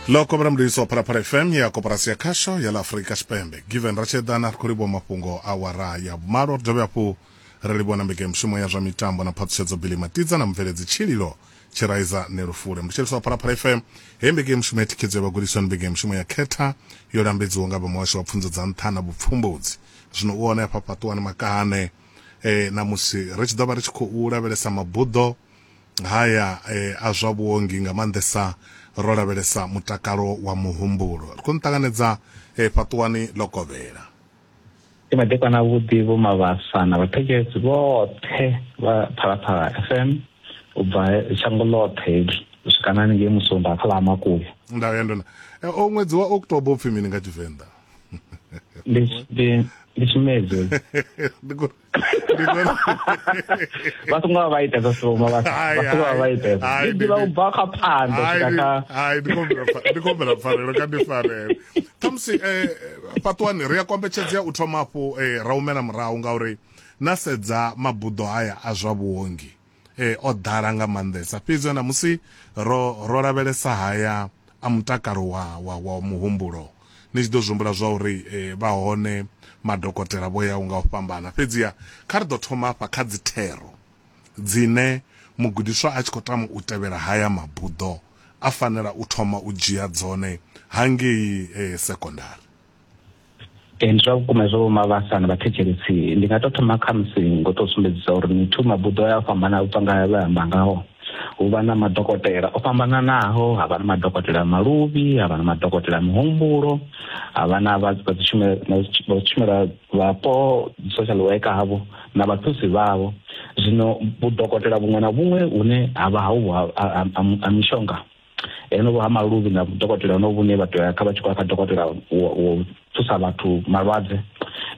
ḽo kovhela mudedisi wa phalaphala fm ya koporasi ya khasho ya ḽa afurika tshipembe given ratshedana ri khou livhuwa mafhungo a wara ya vhumalo ri dovhe hafhu ri livhuwa na mbekanyamushumo ya zwa mitambo na phaṱhutshedzo bili matidza na mubveledzi tshililo tshiraiza nelufule mutsheliso wa phalaphala fm heyi mbekanyamushumo ya thikhedzo ya vhagudiswa ndi mbekanyamushumo ya khetha yo lambedziwaho nga vha muhasho wa pfunzo dza nṱha na vhupfumbudzi zwino u hone hafha fhaṱuwani makahane e, eh, na musi ri tshi ḓo vha ri tshi khou lavhelesa mabuḓo haya a zwa vhuongi nga maanḓesa ro lavhelesa mutakalo wa muhumbulo. Ri khou ni ṱanganedza fhaṱuwani ḽo kovhela. Ndi madekwana avhuḓi Vho Mabasa na vhathetshelesi vhoṱhe vha Phalaphala FM u bva shango ḽoṱhe heḽi u swika na haningei Musumba kha ḽa Ha Makuya. Nda vhuya ndona o ṅwedzi wa October upfhi mini nga Tshivenḓa? Ndi ndi ndi tshimedzi. Ndi khou ba songo ba ita za soma ba songo ba ita ai ndi ba ba kha phando kaka ai ndi kombela ndi kombela farelo ka ndi farelo tamsi eh patwani ri ya kombetshedzea u thoma afho eh ra umela murahu ngauri na sedza mabuḓo haya a zwa vhuongi e, o ḓala nga maanḓesa fhedzi na musi ro ro lavhelesa haya a mutakalo wa wa, wa muhumbulo ni tshi ḓo zwihumbula zwa uri e, vha hone madokotela vho yaho nga u fhambana fhedziha kha ri ḓo thoma afha kha dzi thero dzine mugudiswa a tshi khou tama u tevhela haya mabuḓo a fanela u thoma u dzhia dzone hangei e, sekondari ee ndi zwa vhukuma zwo vhoma vhasana vhathetshelesi ndi nga tou thoma kha musi ngo tou sumbedzisa uri mithu mabuḓo ya fhambana u bva nga vhe amba ngaho hu vha na madokotela o fhambananaho ha vha na madokotela maluvhi ha vha na madokotela mihumbulo ha vha na vha tshumela vhapo social worker havho na vhathusi vhavho zwino vhudokotela vhuṅwe na vhuṅwe hune ha vha ha mishonga honovho ha maluvhi na dokotela honovho vhune vha tea kha vha tshi khou ya kha dokotela wo thusa vhathu malwadze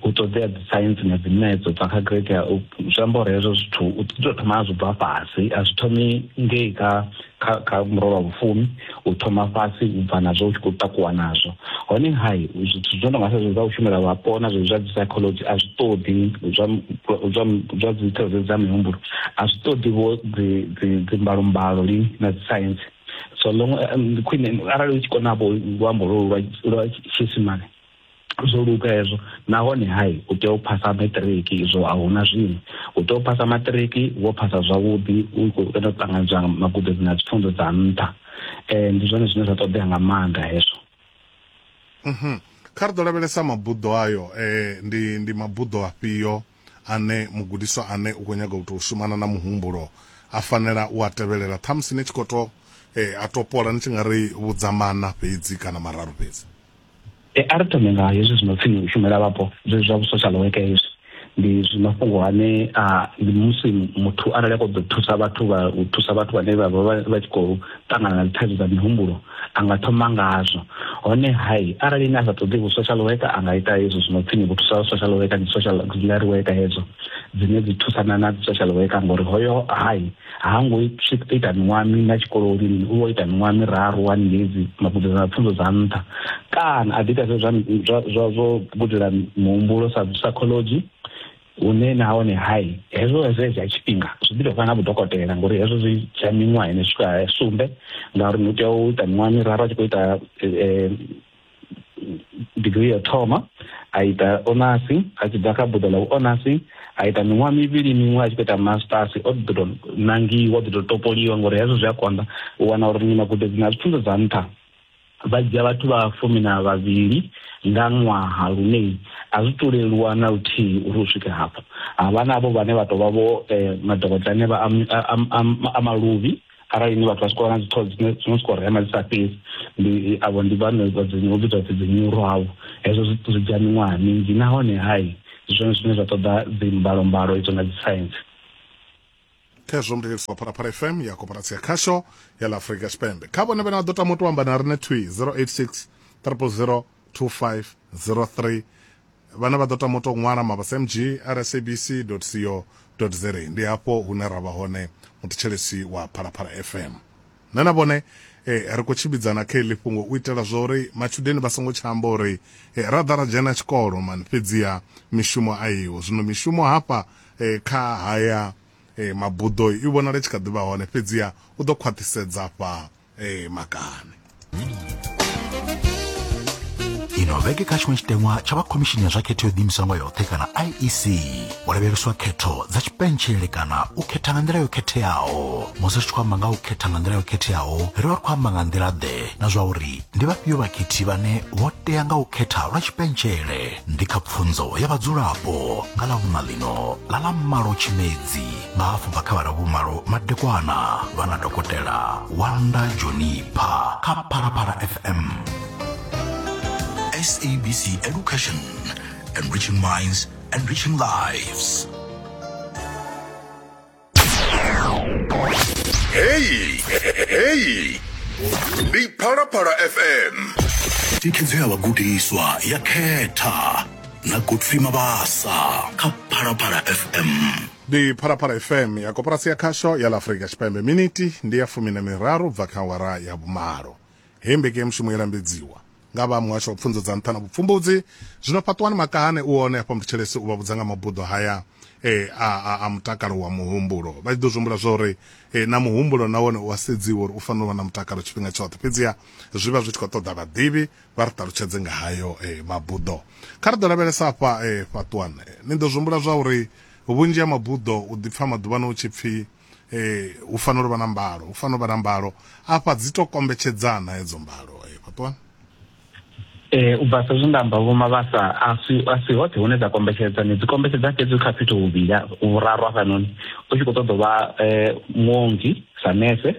u ṱoḓea dzi science na dzi maths u bva kha grade ya zwi amba uri hezwo zwithu u ṱoḓa thoma a zwi bva fhasi a zwi thomi ngei kha kha kha murole wa vhufumi u thoma fhasi u bva nazwo u tshi khou takuwa nazwo hone hai zwithu zwo no nga sa zwezwi zwa u shumela vhapo na zwezwi zwa dzi psychology a zwi ṱoḓi zwa zwa zwa dzi tsireledzo dza mihumbulo a zwi ṱoḓi vho dzi dzi dzi mbalumbalo lini na dzi science so long um, khwine arali u tshi kona vho luambo lwo lwa lwa tshiisimane zwo luga hezwo nahone hai u tea u phasa maṱiriki izwo a huna zwine u tea u phasa maṱiriki wo phasa zwavhuḓi u khou ita u ṱanganedzwa magudedzi na dzipfunzo dza nṱha eh ndi zwone zwine zwa ṱoḓea nga maanḓa hezwo mhm kha ri ḓo lavhelesa mabuḓo ayo eh ndi ndi mabuḓo afhio ane mugudiswa ane u khou nyaga u tou shumana na muhumbulo a fanela u a tevhelela ṱhamusi ni tshi khou to eh, a topola ni tshi nga ri vhudza mana fhedzi kana mararu fhedzi E, a ri thome nga hezwi zwino pfi u shumela vhapo zwezwi zwa vhusocial worker hezwi ndi zwi mafhungo ane a ndi musi muthu arali a khou ḓo thusa vhathu vha u thusa vhathu vhane vha vha vha tshi khou ṱangana na dzithaidzo dza mihumbulo a nga thoma ngazwo hone hai arali ine a sa ṱoḓi vhu social worker a nga ita hezwo zwino pfini vhu thusa social worker ndi social auxiliary worker hedzo dzine dzi thusana na social worker ngori hoyo hai ha ngo ita miṅwaha mina tshikoloni mini u vha ita miṅwaha miraru wani hedzi magudedzana na pfunzo dza nṱha kana a ḓi ita zwa zwo gudela muhumbulo sa psychology hune nahone hai hezwo hezwo hezwi ha tshifhinga zwi ḓi tovha na vhudokotela ngori hezwo zwi dzhia miṅwaha ine swika sumbe ngauri ni tea u ita miṅwaha miraru a tshi khou ita eh, eh, digirii ya u thoma a ita onasi a tshi bva kha buḓo ḽa vhuonasi a ita miṅwaha mivhili miṅwe a tshi khou ita masters o ḓi tou nangiwa o ḓi tou topoliwa ngori hezwo zwi a konḓa u wana uri ni magudedzi na pfunzo dza nṱha vha dzhia vhathu vha fumi na vhavhili nga ṅwaha lune a zwi to leluwa na luthihi uri u swike hafho havha navho vhane vha tovha vho eh, madokotela ane vha a maluvhi arali ni vhathu vha tshi khou vha na dzi thoughts dzine dzino soko rema dzi sa fhedzi ndi avho ndi vhane vha dzi no vhidzwa dzi nyuro avho hezwo zwi zwi dzhia miṅwaha minzhi nahone hai zwone zwine zwa ṱoḓa dzi mbalo mbalo idzo na dzi science khezwo mudededzi wa phalaphala fm ya koporatsi ya khasho ya la afrika tshipembe kha vhone vhane vha ḓo tama u to amba na rine twi 086 300 2503 Vhane vha ḓo tama u tou ṅwala mabasmg at sabc.co.za ndi hafho hune ra vha hone muthetshelesi wa Phalaphala FM. Nṋe na vhone ri khou tshimbidzana kha heḽi fhungo u itela zwa uri matshudeni vha songo tsha amba uri ra ḓa ra dzhena tshikolo mani fhedziha mishumo a iho. Zwino mishumo hafha kha haya mabuḓo i vhonala i tshi kha ḓi vha hone fhedziha u ḓo khwaṱhisedza fha ee makani ino vhege kha tshiṅwe tshiteṅwa tsha vha khomishini ya zwa khetho yo ḓiimiswa nga yoṱhe kana iec u lavheleswa khetho dza tshipentshele kana u khetha nga nḓila yo khetheaho musi ri tshi khou amba nga u khetha nga nḓila yo khetheaho ri vha ri khou amba nga nḓila ḓe na zwa uri ndi vhafhio vhakhethi vhane vho tea nga u khetha lwa tshipentshele ndi kha pfunzo ya vhadzulapo nga ḽa vhuṋa ḽino ḽa ḽa malo tshimedzi nga hafhu bva kha vhala vhumalo madekwana vha na dokotela wanda jonipha kha phalaphala fm sabc education enriching minds enriching lives heyi heyi ndi phalaphala fm thikhedzo ya vhagudiswa ya khetha na godfrey mabasa kha phalaphala fm ndi phalaphala fm ya koporasi ya khasho ya la afurika tshipembe miniti ndi ya fumi na miraru bva kha awara ya vhumalo hei mbekanyamushumo i lambedziwa nga vha muhasho wa pfunzo dza nṱha na vhupfumbudzi zwino fhaṱuwani makahane u one hafha mutshitsheleso u vha vhudza nga mabuḓo haya e, a, a, a mutakalo wa muhumbulo vha tshi ḓo zwi humbula zwa uri e, na muhumbulo na wone u a sedziwa uri u fanela u vha na mutakalo tshifhinga tshoṱhe fhedziha zwi vha zwi tshi khou ṱoḓa vhaḓivhi vha ri ṱalutshedze nga hayo eh, mabuḓo kha ri ḓo lavhelesa afha eh, fhaṱuwana eh, ni ḓo zwihumbula zwa uri vhunzhi ha mabuḓo u ḓipfa maḓuvhano u tshi pfhi eh, hu fanela u vha na mbalo hu fanela u vha na mbalo afha dzi to kombetshedzana hedzo mbalo eh, fhaṱuwana Eh, u bva sa zwe nda amba vhomavhasa a si a si hoṱhe hune dza kombetshedza ni dzi kombetshedza fhedzi kha fhethu huvhili vhuraru hafhanoni u tshi khou ṱoḓa u vha um muongi sa nese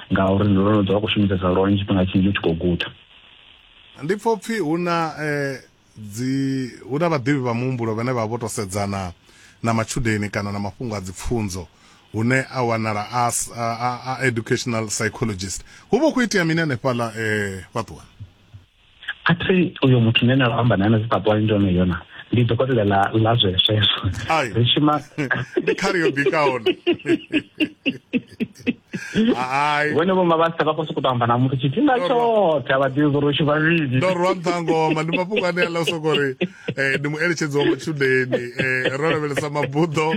ngauri ndo no ḓo vha khou shumisesa lwone tshifhinga tshinzhi u tshi khou guda. Ndi pfa upfi hu na dzi hu na vhaḓivhi vha muhumbulo vhane vha vho to sedzana na matshudeni kana na mafhungo a dzipfunzo hune a wanala a a educational psychologist hu vha hu khou itea mini hanefhaḽa fhaṱuwani? a thi uyo muthu ne na amba naye na dzi papwani ndi one yona ndi dokotela la la zwesweswo ri shuma ndi khari yo bikaho hai vhone vho mabasa vha khou sokou tou amba na muthu tshifhinga tshoṱhe a vha ḓivhi uri u shuma vhidi ndo rwa nṱhangoma ndi mafhungo ane a ḽa u sokou ri eh, ndi mueletshedzi wa matshudeni eh, ro lavhelesa mabuḓo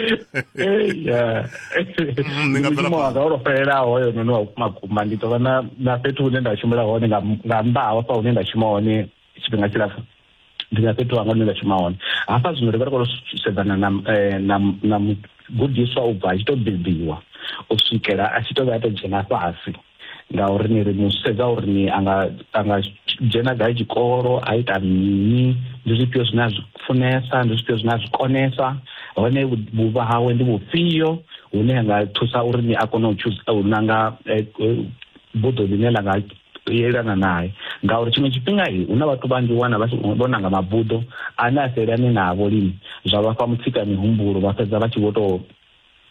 Mm, ni nga bvela mushumo wanga olo fhelelaho hoyo noni wa vhukuma kuma ndi tovha na na fhethu hune nda shumela hone nga nga nnḓa ha hafha hune nda shuma hone tshifhinga tshilapfu ndi na fhethu hanga hune nda shuma hone hafha zwino ri vha ri khou sedzana na eh, na na mugudiswa u bva a tshi to bebiwa u swikela a tshi to vha a to dzhena fhasi ngauri ni ri mu sedza uri ni anga anga dzhena gai tshikolo a ita mini ndi zwifhio zwine a zwi funesa ndi zwifhio zwine a zwi konesa hone vhuvha hawe ndi vhufhio hune ha nga thusa uri ni a kone u thusa u nanga eh, eh, buḓo ḽine ḽa nga yelana naye ngauri tshiṅwe tshifhinga i hu na vhathu vhanzhi wana vho nanga mabuḓo ane a sa elane navho lini zwa vha fha mutsika mihumbulo vha fhedza vha tshi vho tou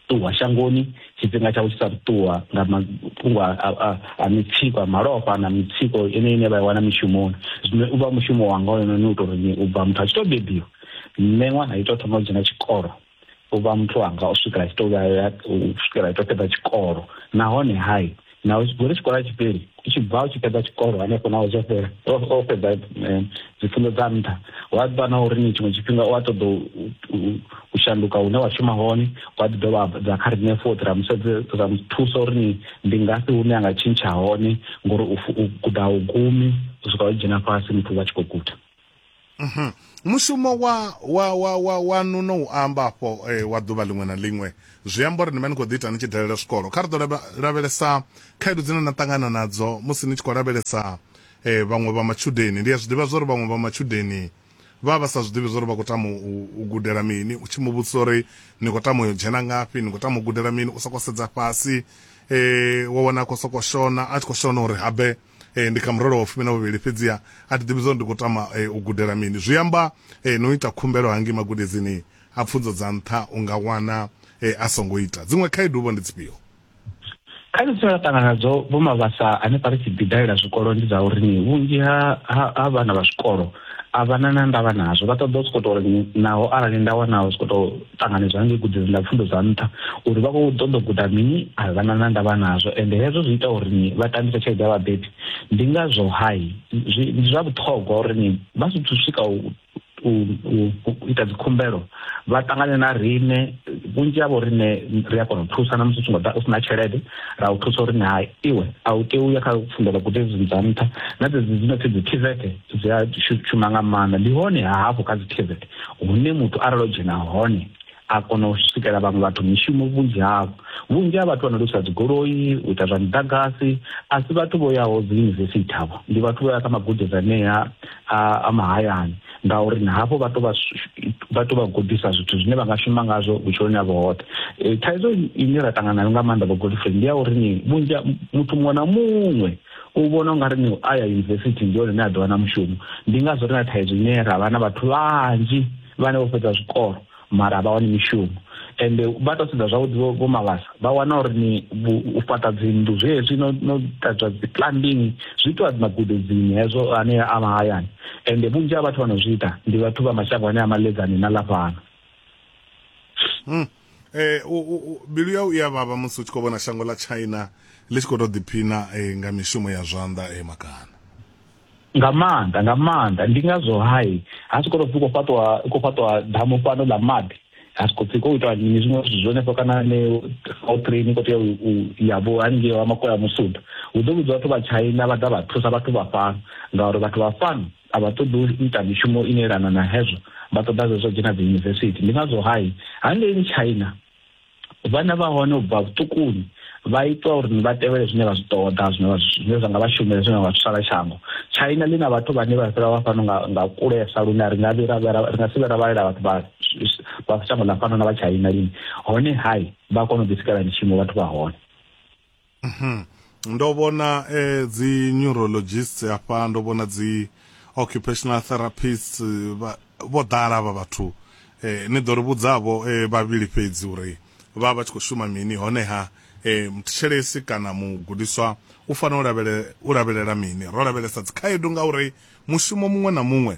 ṱuwa shangoni tshifhinga tshawe tshi sa ṱuwa nga mafhungo a mitsiko a malofha na mitsiko ine ine vha i wana mishumoni zwino u vha mushumo wanga ono ni u tou ri u bva muthu a tshi tou bebiwa nṋe ṅwana a ito thoma u dzhena tshikolo u vha muthu wanga u swikela tshi tou vhuya u swikela ito fhedza tshikolo nahone hai naho gore tshikolo a tshi fheli u tshi bva u tshi fhedza tshikolo hanefho naho zwo fhela o fhedza eh, dzipfunzo dza nṱha wa ḓivha na uri ni tshiṅwe tshifhinga u a ṱoḓa u shanduka hune wa shuma hone wa ḓi dovha dza kha riṋe fothi ra musedze ra muthusa uri ni ndi ngafhi hune a nga tshintsha hone ngori u guda u gumi u swika u dzhena fhasi muthu vha tshi khou guda Mhm. mushumo wa wa wa wa wa nuno u amba afho eh, wa ḓuvha ḽiṅwe na ḽiṅwe zwi amba uri ni vha ni khou ḓi ita ni tshi dalela zwikolo kha ri ḓo lava- lavhelesa khaedu dzine na ṱangana nadzo musi ni tshi khou lavhelesa eh, vhaṅwe vha matshudeni ndi a zwi ḓivha zwori vhaṅwe vha matshudeni vha vha sa zwi ḓivhi zwori vha khou tama u, u gudela mini u tshi mu vhudzisa uri ni khou tama u yo dzhena ngafhi ni khou tama u gudela mini u sokou sedza fhasi eh, wa wana a khou sokou shona a tshi khou shona uri habe eh, ndi kha murole wa fumi na vhuvhili fhedziha a thi ḓivhi zwo ndi khou tama eh, u gudela mini zwi amba eh, no ita khumbelo hangi magudedzini a pfunzo dza nṱha u nga wana eh, a songo ita dziṅwe khaedu vho ndi dzifhio khaedu dzine ra ṱangana nadzo vho mavhasa ane pa ri tshi ḓidalela zwikolo ndi dza uri ni vhunzhi ha ha- ha vhana vha zwikolo a vha na na ndavha nazwo vha ṱoḓa u sokou tou ri naho arali nda wanaho sokou tou ṱanganedzwa ngei gudedzini ḽa pfundo dza nṱha uri vha khou ṱoḓa guda mini a vha na na ndavha nazwo ende hezwo zwi ita uri ni vha tambisa tshelede ya vhabebi ndi ngazwo hai ndi zwa vhuṱhogwa uri ni vha zwi swika u ita dzikhumbelo vha ṱangane na rine vhunzhi havho rine ri a kona u thusa na musi u songo ḓa u sina tshelede ra u thusa uri ni hai iwe a u tei u ya kha pfundo ḽa gudedzini dza nṱha na dzedzi dzi no pfi dzi tizete dzi a shuma nga maanḓa ndi hone hafhu kha dzi tvet hune muthu arali o dzhena hone a kona u swikela vhaṅwe vhathu mishumo vhunzhi havho vhunzhi ha vhathu vha no lusa dzigoloi u ita zwa muḓagasi a si vhathu vho yaho dzi yunivesithi havho ndi vhathu vho ya kha magudedzi anea a mahayani ngauri na hafho vha to vha gudisa zwithu zwine vha nga shuma ngazwo vhutshiloni havho hoṱhe e, thaidzo ine ra ṱangana nayo nga maanḓa vho godfrey ndi ya uri ni vhunzhi muthu muṅwe na muṅwe u vhona ungari ni u aya yunivesithi ndi hone ni a ḓiwana mushumo ndi ngazwo ri na thaidzo ine ra vha na vhathu vhanzhi vhane vho fhedza zwikolo mara vha wani mishumo ende vha tou sedza zwavhuḓi vho mavhasa vha wana uri ni u fhaṱa dzinnḓu zwezwi no no ṱadzwa dzi plumbing zwi itiwa dzi magudedzini hezwo ane a mahayani ende vhunzhi ha vhathu vha no zwi ita ndi vhathu vha mashango ane a maledzani na lafhano hmm. eh u, u, u, mbilu yau i ya vhavha musi u tshi khou vhona shango ḽa china ḽi tshi khou tou ḓiphina eh, nga mishumo ya zwanḓa eh, makana nga maanḓa nga maanḓa ndi ngazwo hai ha si khou tou pfi khou fhaṱwa khou fhaṱwa damu fhano ḽa maḓi ha si khou pfi khou itwa mini zwiṅwe zwithu zwenefho kana ne o train i khou tea u ya vho haningei wa makoya musuda hu ḓo vhidzwa vhathu vha china vha ḓa vha thusa vhathu vha fhano ngauri vhathu vha fhano a vha ṱoḓi u ita mishumo ine elana na hezwo vha ṱoḓa zwezwo dzhena dzi yunivesithi ndi ngazwo hai hangeini china vhana vha hone u bva vhuṱukuni vha itwa uri vha tevhele zwine vha zwi ṱoḓa zwine zwine zwa nga vha shumela zwine vha thusala shango china ḽi na vhathu vhane vha fhira vha fhano nga kulesa lune ri nga vhira ri nga si vhera vhalela vhathu vha vha shango ḽa fhano na vha china lini hone hai vha kona u ḓisikela mishumo vhathu vha hone mhm. ndo vhona eh, dzi neurologist hafha ndo vhona dzi occupational therapist eh, vho ḓala vha vhathu eh, ni ḓo ri vhudzavho eh, vhavhili fhedzi uri vha vha tshi khou shuma mini honeha eh, mthetshelesi kana mugudiswa u fanela u lavhelela mini ro lavhelesa dzikhaedu ngauri mushumo muṅwe na muṅwe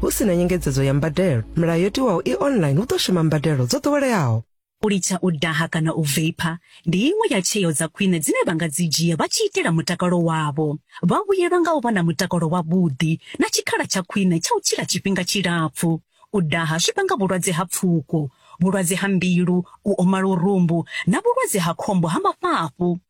hu si na nyengedzedzo ya mbadelo milayo yo tiwaho i online hu ḓo shuma mbadelo dzo ḓoweleaho u litsha u daha kana u vapor ndi iṅwe ya tsheo dza khwine dzine vha nga dzi dzhia vha tshi itela mutakalo wavho. Vha vhuyelwa nga u vha na mutakalo wavhuḓi na tshikhala tsha khwine tsha u tshila tshifhinga tshilapfu. U daha zwi vhanga vhulwadze ha pfuko, vhulwadze ha mbilu, u oma lurumbu na vhulwadze ha khombo ha mafhafhu.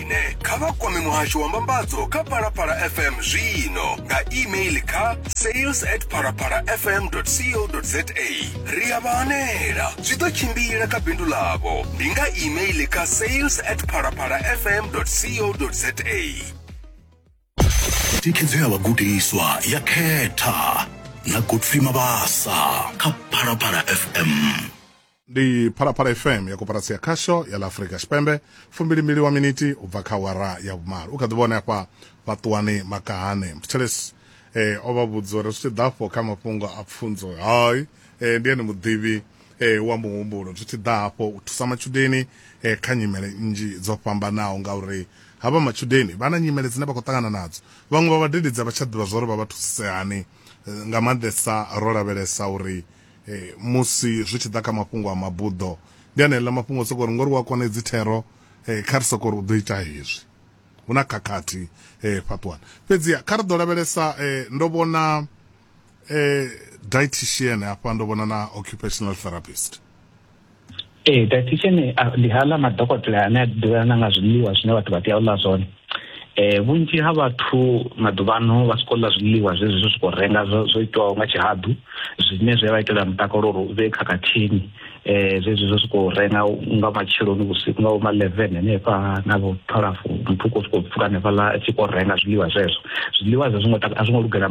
Ine kha vha kwame muhasho wa mbambadzo kha Phalaphala FM zwino nga email kha sales at phalaphalafm.co.za ri a vha hanela zwi ḓo tshimbila kha bindu ḽavho ndi nga email kha sales at phalaphalafm.co.za thikhedzo ya vhagudiswa ya khetha na godfrey mabasa kha phalaphala fm ndi phalaphala fm ya koparatsi ya khasho ya la afurika tshipembe fumbili mbili wa miniti u bva kha wara ya vhumalo u kha ḓi vhone hafha vhaṱuwani makahane mthetshelesi eh, o vha vhudza uri zwi tshi ḓa afho kha mafhungo a pfunzo hai eh, ndi ene muḓivhi eh, wa muhumbulo zwi tshi ḓa hafho u thusa matshudeni eh, kha nyimele nnzhi dzo fhambanaho ngauri havha matshudeni vha na nyimele dzine vha khou ṱangana nadzo vhaṅwe vha vhadededzi a vha tsha ḓivha zwa uri vha vha thusise hani eh, nga maanḓesa ro lavhelesa uri eh, musi zwi tshi ḓa kha mafhungo a mabuḓo ndi aneḽa mafhungo soko ri ngori wa kona edzi thero eh, kha ri soko ri u ḓo ita hezwi hu na khakhathi eh, fhaṱuwana fhedziha kha ri ḓo lavhelesa eh, ndo vhona eh, dietitian hafha ndo vhona na occupational therapist ee dietitian ah, ndi haḽa madokotela ane a ḓivhelana nga zwiḽiwa zwine vhathu vha tea u ḽa zwone eh vhunzhi ha vhathu maḓuvhano vha siko ḽa zwiḽiwa zwezwi zwi khou renga zwo itwaho nga tshihaḓu zwine zwi vha itela mutakalo uri u vhe khakhathini eh zwezwi zwo siko renga nga matsheloni vhusiku nga ma 11 hanefha na vho 12 muthu ko siko pfuka hanefha la tshi khou renga zwiḽiwa zwezwo zwiḽiwa zwa zwingo a zwingo lugela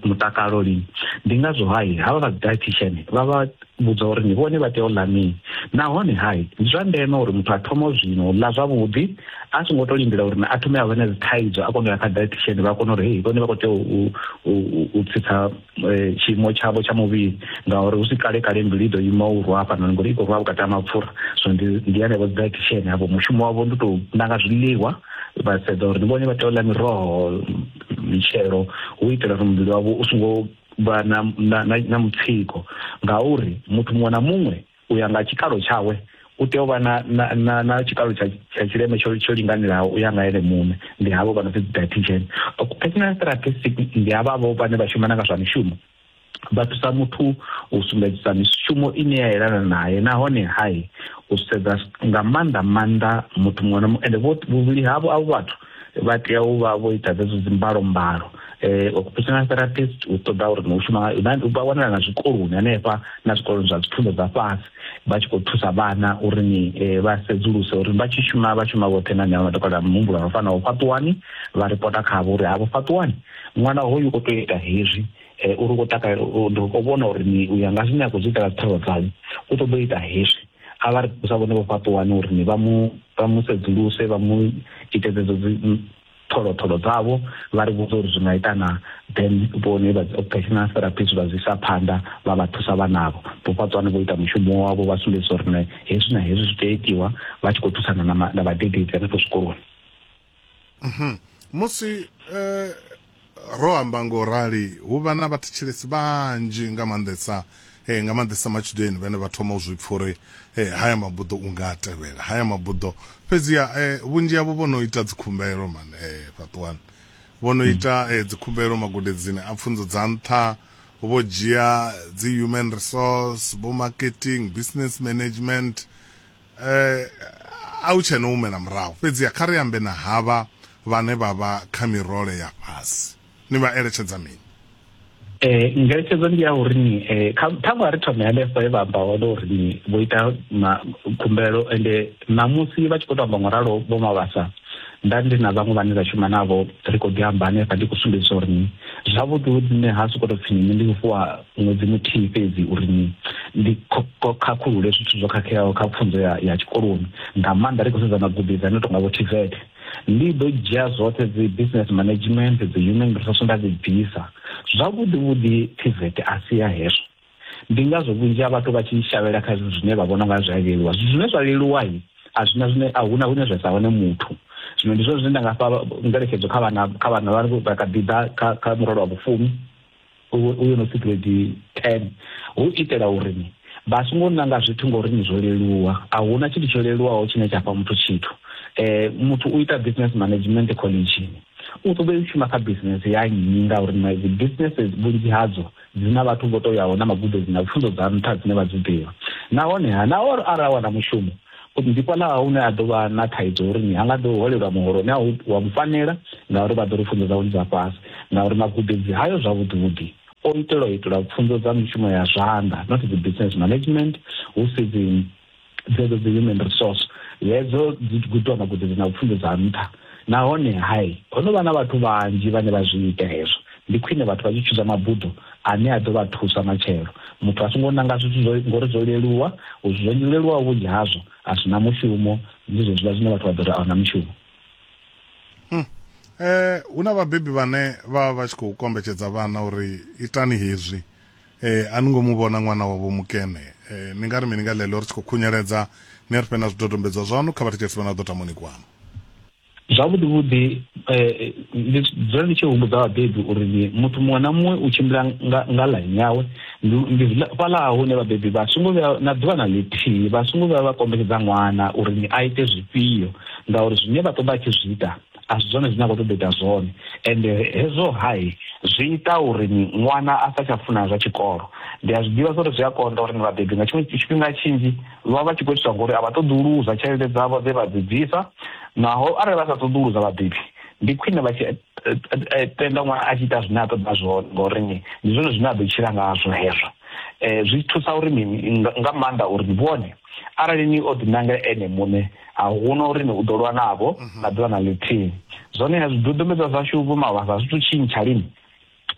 mutakalo lini ndi ngazwo hai havha vha dietitian vha vha vhudzwa uri ndi vhone vha tea u ḽa mini. Nahone ha ndi zwa ndeme uri muthu a thome zwino u ḽa zwavhuḓi a songo tou lindela uri a thome a vha na dzi thaidzo a kone u ya kha dietitian vha kone uri hei vhone vha khou tea u u tsitsa tshiimo tshavho tsha muvhili ngauri hu si kale kale mbilu i ḓo ima u rwa hafhanoni ngori i khou rwa vhukati ha mapfura so ndi ndi henevho dzi dietitian havho mushumo wavho ndi tou nanga zwiḽiwa vha sedza uri ndi vhone vha tea u ḽa miroho mitshelo hu itela uri muvhili wavho u songo vha na, na, na, na mutsiko ngauri muthu muṅwe na muṅwe u ya nga tshikalo tshawe u tea u vha na, na, na, na tshikalo tsha, tsha tshileme tsho, tsho linganelaho u ya nga ene muṋe ndi havho vha no pfi dietitian occupational therapist ndi havhavho vhane vha shumana nga zwa mishumo vha thusa muthu u sumbedzisa mishumo ine ya yelana naye nahone hai u sedza nga maanḓa maanḓa muthu muṅwe na muṅwe ende vhuvhili havho avho vhathu vha tea u vha vho ita dzedzo dzimbalo mbalo eh occupational therapist u ṱoḓa uri no shuma u vha wanala na zwikoloni hanefha na zwikoloni zwa dzipfunzo dza fhasi vha tshi khou thusa vhana uri ni eh, vha sedzuluse uri vha tshi shuma vha shuma vhoṱhe na nyalo matakala muhumbulo no fanaho fhaṱuwani vha ripota khavho uri havho fhaṱuwani ṅwana hoyu o tou ita hezwi eh, uri u khou takalela ndi khou vhona uri ni u ya nga zwine a khou zwi itela dzithavha dzanyu u ṱoḓa u ita hezwi a vha ri thusa vhone vho fhaṱuwani uri ni vha mu vha mu sedzuluse vha mu ite dzedzo tholotholo dzavho vha ri vhudza uri zwi nga ita na then vhone vha occupational therapist vha zwi isa phanḓa vha vha thusa vhanavho vho fhaṱuwani vho ita mushumo wavho vha sumbedzisa uri ne hezwi na hezwi zwi tea itiwa vha tshi khou thusana na vhadededzi hanefho zwikoloni musi eh, ro amba ngo rali hu vha na vhathetshelesi vhanzhi nga maanḓesa eh, nga maanḓesa matshudeni vhane vha thoma u zwi pfa uri eh, haya mabuḓo u nga a tevhela haya mabuḓo fhedziha eh, vhunzhi havho vho no ita dzikhumbelo man eh, fhaṱuwani vho no ita eh, dzikhumbelo magudedzini a pfunzo dza nṱha vho dzhia dzi human resource vho marketing business management Eh, a u tshena humela murahu fhedziha kha ri ambe na havha vhane vha vha kha mirole ya fhasi ni vha eletshedza mini Eh, ngeletshedzo ndi ya uri ni eh, kha- ṱhaṅwe a ri thome hanefho he vha amba hone uri ni vho ita ma- khumbelo ende ṋamusi vha tshi khou tou amba ngoralo vho mavhasa nda ndi na vhaṅwe vhane ra shuma navho ri khou ḓi amba hanefha ndi khou sumbedzisa uri ni zwavhuḓi vhuḓi nṋe ha sokou tou pfhi nṋe ndi fhiwa ṅwedzi muthihi fhedzi uri ni ndi khakhulule zwithu zwo khakheaho kha pfunzo ya, ya tshikoloni nga maanḓa ri khou sedza magubi dza no tonga vho tvet ndi ḓo dzhia zwoṱhe dzi business management dzi human resource nda dzi bvisa zwavhuḓi vhuḓi tvet a si ya hezwo ndi ngazwo vhunzhi ha vhathu vha tshi shavhela kha zwithu zwine vha vhona nga zwi a leluwa zwithu zwine zwa leluwa i a zwina zwine a huna hune zwa sa wane muthu zwino ndi zwone zwine nda nga fha ngeletshedzo kha vhana kha vhana vha kha ḓi ḓa kha murole wa vhufumi u yo no pfi grade 10 hu itela uri ni vha songo nanga zwithu ngori ni zwo leluwa a huna tshithu tsho leluwaho tshine tsha fha muthu tshithu eh muthu u ita business management college u ṱoḓa u shuma kha business ya nnyi ngauri na dzi businesses vhunzhi hadzo dzi na vhathu vho to yaho na magudedzini na pfunzo dza nṱha dzine vha dzi ḓivha nahone ha na arali a wana mushumo Khosi ndi fhaḽa hune a ḓo vha na thaidzo ya uri ni ha nga ḓo holelwa muholo une wa mu fanela, ngauri vha ḓo ri pfunzo dzawe ndi dza fhasi, ngauri magudedzi hayo zwavhuḓi-vhuḓi o itelwa u itelwa pfunzo dza mishumo ya zwanḓa, not dzi business management, hu si dzi dzedzo dzi human resource. Hedzo dzi gudwa magudedzi na pfunzo dza nṱha. Nahone, hai, ho no vha na vhathu vhanzhi vhane vha zwi ita hezwo. Ndi khwine vhathu vha tshi tshuza mabuḓo ane a ḓo vha thusa matshelo. Muthu a songo nanga zwithu zwo, ngori zwo leluwa. U zwi zwo leluwaho vhunzhi hazwo a zwi na mushumo, ndi zwezwiḽa zwine vhathu vha ḓo ri a hu na mushumo. Hmm. Eh, hu na vhabebi vhane vha vha vha tshi khou kombetshedza vhana uri itani hezwi. Eh, a ni ngo mu vhona ṅwana wa Vho Mukene. Eh, ni nga ri mini nga ḽeḽo ri tshi khou khunyeledza? Ni ri fhe na zwidodombedzwa zwaṋu kha vhathetshelesi vha na ḓo tamoni kwanu. Zwavhuḓi vhuḓi eh, ndi dzula ndi tshi humbudza vhabebi uri ni muthu muṅwe na muṅwe u tshimbila nga, nga ḽaini yawe ndi, ndi zwiḽa- fhaḽa hune vhabebi vha songo vhuya na ḓuvha na ḽithihi vha songo vhuya vha kombetshedza ṅwana uri ni a ite zwifhio ngauri zwine vha ṱoḓa a tshi zwi ita a si zwone zwine a khou ṱoḓa ita zwone ende hezwo hai zwi ita uri ṅwana a sa tsha funa zwa tshikolo ndi a zwi ḓivha zwa uri zwi a konḓa uri ni vhabebi nga tshiṅwe tshifhinga tshinzhi vha vha tshi khou itiswa ngori a vha ṱoḓi u luza tshelede dzavho dze vha dzi bvisa naho arali vha sa ṱoḓi u luza vhabebi ndi khwine vha tshi eh, eh, eh, tenda ṅwana a tshi ita zwine a ṱoḓa zwone ngori ni ndi zwone zwine a ḓo tshila ngazwo hezwo um zwi thusa uri mini nga maanḓa uri ni vhone Arali ni o ḓinangela ene muṋe, a hu na uri ni u ḓo lwa navho mhm. na ḓuvha na ḽithihi. Zwoneha zwidodombedzwa zwashu vho mavhasa zwi tou tshintsha lini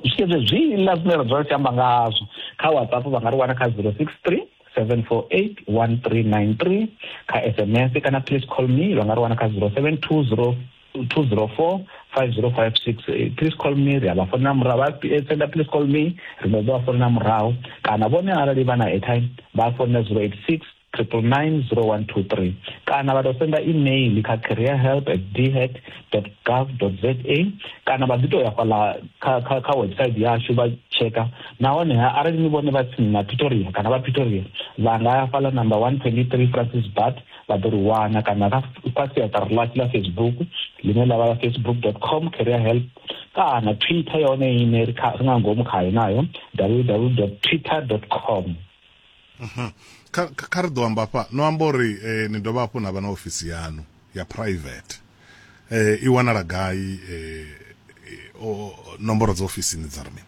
zwikezwe zwiḽa zwine ra dzula ri tshi amba ngazwo kha whatsapp vha nga ri wana kha zero six three seven four eight one three nine three kha sms kana please call me vha nga ri wana kha zero seven two zero 204 5056 please call me ri a vha founela murahu vha eh, senda please call me ri ḓo vha founela murahu kana vhone arali vha na airtime vha founela 086 triple nine zero one two three kana vha tou senda email kha career help at dhet dot gov dot za kana vha ḓi tou ya fhala kha kha kha website yashu vha tsheka nahone arali ni vhone vha tsini na pretoria kana vha pretoria vha nga ya fhala number one twenty three francis bat vha ḓo ri wana kana kha kha siaṱari ḽashu ḽa facebook ḽine ḽa vha ḽa facebook com career help kana twitter yone ine ri kha- ri nga ngomu khayo nayo www twitter com Mhm. kha kha- kha ri ḓo amba fha no amba uri eh, ni dovha hafhu na vha na ofisi yanu ya private eh, i wanala gai eh, eh, o- nomboro dza ofisini dza ri mini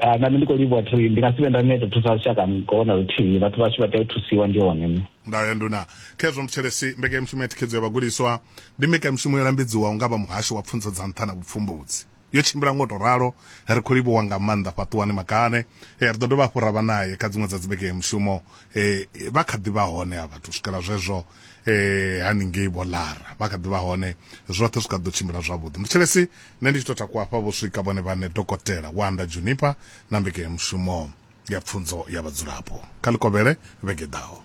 Ah, nami ndi khou livhuwa thi ndi nga si vhe nda neta thusa lushaka ngoho na luthihi vhathu vhashu vha tea u thusiwa ndi hone nṋe Ndayo ya Nduna Khezwa Muthelesi, Mbekanyamushumo ya Thikhedzo ya Vhagudiswa ndi mbekanyamushumo yo lambedziwaho nga vha Muhasho wa Pfunzo dza Nṱha na Vhupfumbudzi. Yo tshimbila nga u tou ralo, ri khou livhuwa nga maanḓa Fhaṱuwani Makane. Eh, Ri ḓo dovha hafhu ra vha nae kha dziṅwe dza dzimbekanyamushumo. Eh, Vha kha ḓi vha hone ha vhathu u swikela zwezwo. eh haningei vho lara vha kha ḓivha hone zwoṱhe zwi kha ḓo tshimbila zwavhuḓi muthetshelesi nṋe ndi tshi tou takuwa hafha vho swika vhone vhane dokotela wanda junipa na mbekanyamushumo ya pfunzo ya vhadzulapo kha ḽikovhele vhege ḓaho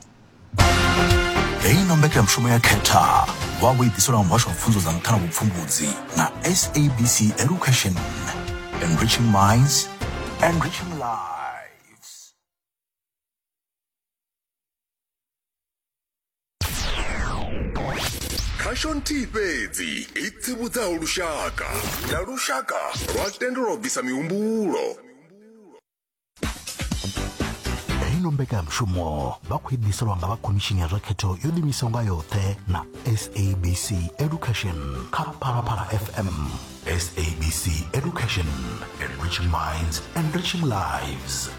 heyi no mbekanyamushumo ya khetha vha vho i ḓiselwa nga muhasho wa pfunzo dza nṱha na vhupfumbudzi na sabc education enriching minds enriching life khasho nthihi fhedzi i tsivhudzaho lushaka na lushaka lwa tendelwa u bvisa mihumbulo ino mbekanyamushumo vha khou idiselwa nga vha khomishini ya zwa khetho yo ḓimisaho nga yoṱhe na sabc education kha phalaphala fm sabc education enriching minds enriching lives